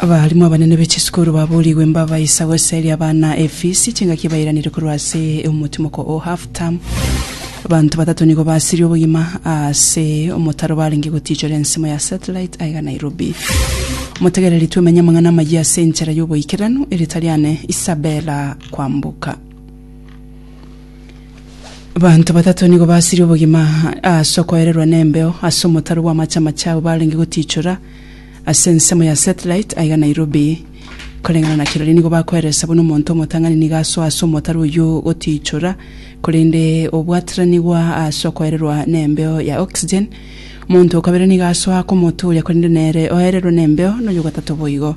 Abalimu abanene be chisukuru baboorigwe mbabaisa goseria abana efisi chingaki ebairanire korwa ase omotimoko o half term abanto batato nigo basirie obogima ase omotaro barenge gotiichora ensemo ya satellite aiga Nairobi motegereri twemenye amang'ana amayia ase enchera y'oboikeranu eritariane Isabella Kwamboka Abanto batato nigo basirie obogima ase okoererwa nembeo ase omotaro bw'amache amache abwo barenge gotichora ase ensemo ya satellite aiga Nairobi. Koreng'ana na kirori nigo bakoeresa buna omonto omotang'ani nigo asoa ase omotaro oyio gotichora korende obwataranigwa ase okoererwa nembeo ya oxygen. Omonto okabere nigo asoa aka omoto oria korende nere oererwe nembeo noyo gatato boigo.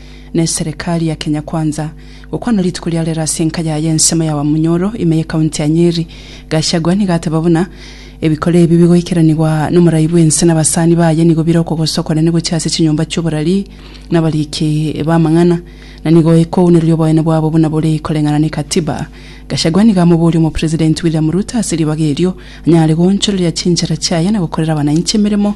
ne Serekari ya Kenya Kwanza, gokwana rituko riarero ase enka yaye ensemo ya Wamunyoro, ime ye County ya Nyeri. Gachagua nigo ateba buna, Ebikora ebi bigoikeranigwa nomorai bw'ense nabasani baye nigo bire okogosa okonene gochia ase chinyomba chi'oborari nabariki b'amang'ana, na nigo ekouniroria oboene bwabo buna bore koreng'ana ne Katiba. Gachagua nigo amoboria Omopresidenti William Ruto ase ribaga erio anyare goonchoreria chinchera chiaye na gokorera abananchi emeremo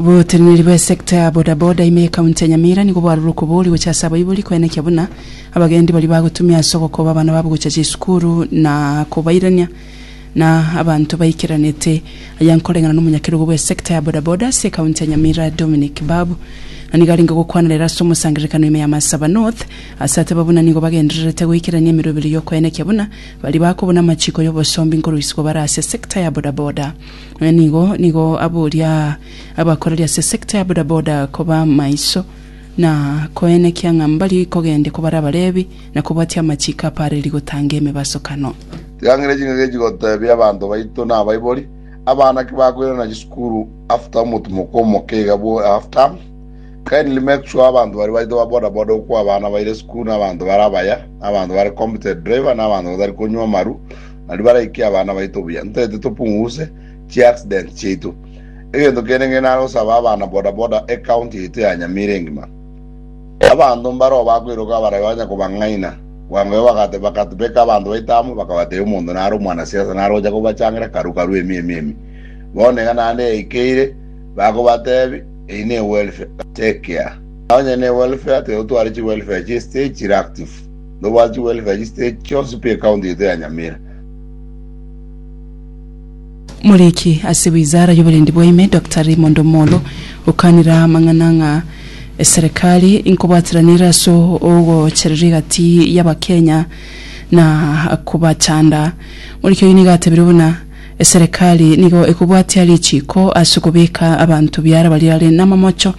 Oboteneneri bw'esecta ya bodaboda ime y'Ekaunti ya Nyamira nigo bwarorire okobori gocha ase abaibori koenekia buna abagendi baria bagotumia ase ogokoba abana babo gocha chisukuru na kobairania na abanto baikeranete. Aya nkoreng'ana na omonyakerogo bw'esecta ya bodaboda ase ekaunti ya Nyamira Dominic Babu na nigo arenge gokwana rero ase omosangererekano ime ya Marsaba North ase ateba buna nigo bagendererete goikerania emerwa ebere y'okoenekia buna baria bakobuna amachiko y'obosombi nkorusiwa bare ase secta ya bodaboda. Naende nigo nigo aboria abakoreri ase esekta ya bodaboda koba maiso na koenekia ng'a mbarie kogende kobare Abalevi na kobwatia amachiko apareri gotanga emebasokano. Tigangeria ching'ake echi gotebia abanto baito na abaibori, abana ki bakoirana chisukuru after omotumoko omoke iga bwo half term. Kindly make sure abanto baria baito ba boda boda okwo abana baire esukuru nabanto bare abaya, nabanto bare competent driver nabanto batari konywa amaru, Nario baraike abana baito buya, ntaete topunguse chi accident chiaito. Egento kende nge nare gosaba abana boda boda e county yaito ya Nyamira engima. Abanto mbaroo bakoiroka abarabia banya kobang'aina, bwango bagate bakatbeka abanto baito amo bakabatebia omonto nare omwana siasa nare gocha kobachangera karu karu emi emi emi. Bono iga naende yaikeire bakobatebi eyi ne welfare. Take care. Onye ne welfare tigo tware chi welfare chie stage chire active. Nobwate gwere Kayiste chionsi pi ekaunti yaito ya Nyamira. Omoriki ase wizara y'oborendi bwaime Doctor Raymond Omolo okanire amang'ana ng'a eserekari inkobwatiranere ase ogochereria egati y'abakenya na kobachanda. Omoriki oyio nigo atebirie buna eserekari nigo ekobwatia richiiko ase okobeka abanto biara baria are namamocho.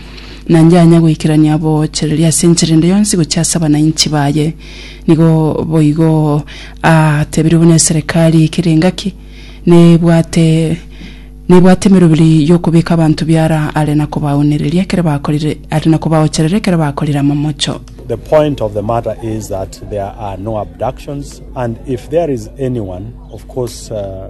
na inche anya goikerania aboochereria ase enchera ende yonsi gochia ase abanainchi baye. Nigo boigo atebirie buna eserekari ekere engaki nebwate nebwate emeroberi y'okobeka abanto biara are na kobaonereria ekero bakorire are na kobaocherera ekero bakorire amamocho. The point of the matter is that there are no abductions and if there is anyone of course uh,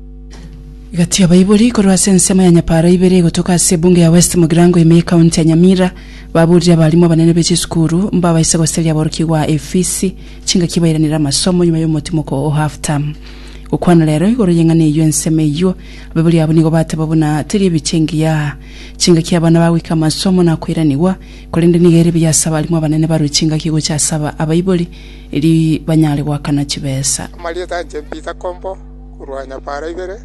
Gati abaibori korwa ase ensemo ya nyapaara ibere egotoka ase ebunge ya West Mugirango ime y'Ekaunti ya Nyamira baburire abarimu abanene be chisukuru mbabaise goseria aborokigwa efisi chingaki bairanere amasomo nyuma y'omotimoko o half term. Gokwana rero igoro y'eng'ana eyio ensemo eyio abaibori abo nigo bateba buna teri ebiche engiya chingaki abana bagoika amasomo na koiranigwa korende nigo ere buya ase abarimu abanene barwe chingaki gocha ase abaibori eri banyare goakana chibesa. Amarieta anche Peter Kombo. korwa nyapara ibere,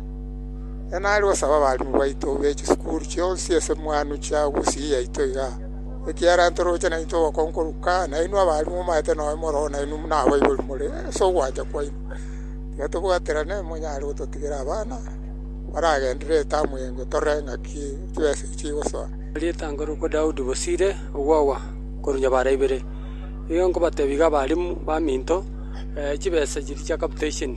e nare gosaba abalimu baito be chisukuru chionsi esemwanu chia obosii yaito iga, ekiagera ntoroche naintwe obokong'u korwa kare, nainwe abalimu omanyete noyo moroo nainwe buna abaibori more ase ogwancha kwaino. Tiga tobwaterane monyare gototigera abana baragenderere etamu eye inwe torore ng'aki chibesa echi chigosoa. Rieta nkorokwa Daudi Bosire ogwagwa korwa nyabara ibere. Nigo nkobatebia iga abalimu baminto, chibesa chiria chia capitation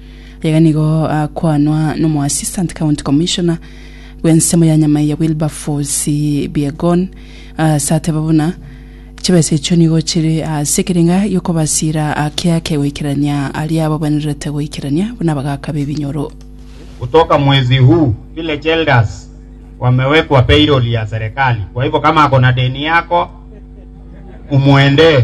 Iga nigo akwanwa n'omoassistant county commissioner bw'ensemo ya Nyamaiya Wilberforce Biegon ase ateba buna chibesa echio nigo chire ase ekerenga gi'okobasiira ake ake goikerania aria abagwenerete goikerania buna abagaaka b'ebinyoro. Kutoka mwezi huu village elders wamewekwa payroll ya serikali kwa hivyo kama akona deni yako umuendee.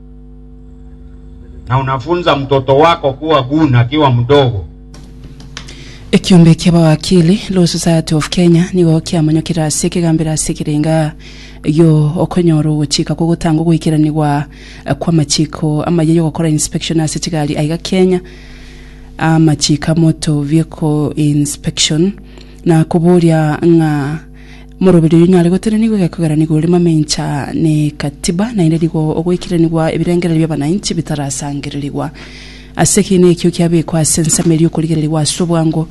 na unafunza mtoto wako kuwa gun akiwa mdogo. Ekiombe kia bawakili Law Society of Kenya nigo kiamonyokire ase ekegambero ase ekerenga yo okonyora ogochika kwa gotanga ogoikeranigwa kw'amachiko amaye y'ogokora inspection ase chigari aiga Kenya amachiko a motor vehicle inspection na koboria ng'a Omoroberi oyio nare gotenenigwa egekogeranigwa ore mamencha ne Katiba, naende nigo ogoikeranigwa ebirengererio bi'abananchi bitarasangererigwa. Ase ekiina ekio kiabekwa ase ensemo eria okorigererigwa ase obwango,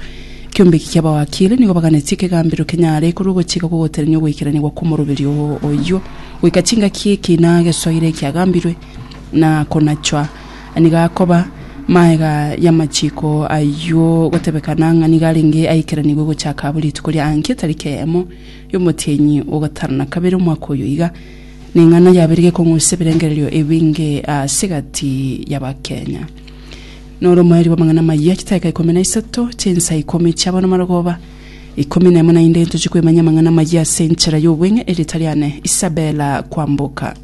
Ekiombeki kia Abawakili nigo baganetie ekegambero kenyare korwa ogochika kw'ogotenenia ogoikeranigwa kw'omoroberi oyio goika chingaki ekiina gesoire ekiagambirwe na konachwa. Nigo akoba magega y'amachiko ayio gotebekana ng'a nigo arenge aikeranigwe gochaka buri rituko ria ankie tariki eyemo y'omotienyi o gatano na kabere omwaka oyo iga. Neng'ana yabere gekong'usa ebirengererio ebinge ase egati y'Abakenya. Noro omoerio bw'amang'ana amayia chitaika ikomi na isato chinsa ikomi chiabo namarogoba ikomi nemo naende ntochie kwemanya amang'ana amayia ase enchera y'obweng'e erio tari ane Isabella kwamboka.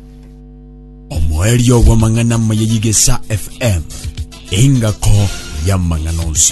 Omoerio bw'amang'ana amaya y'Igesa FM, engako y'amang'ana onsi.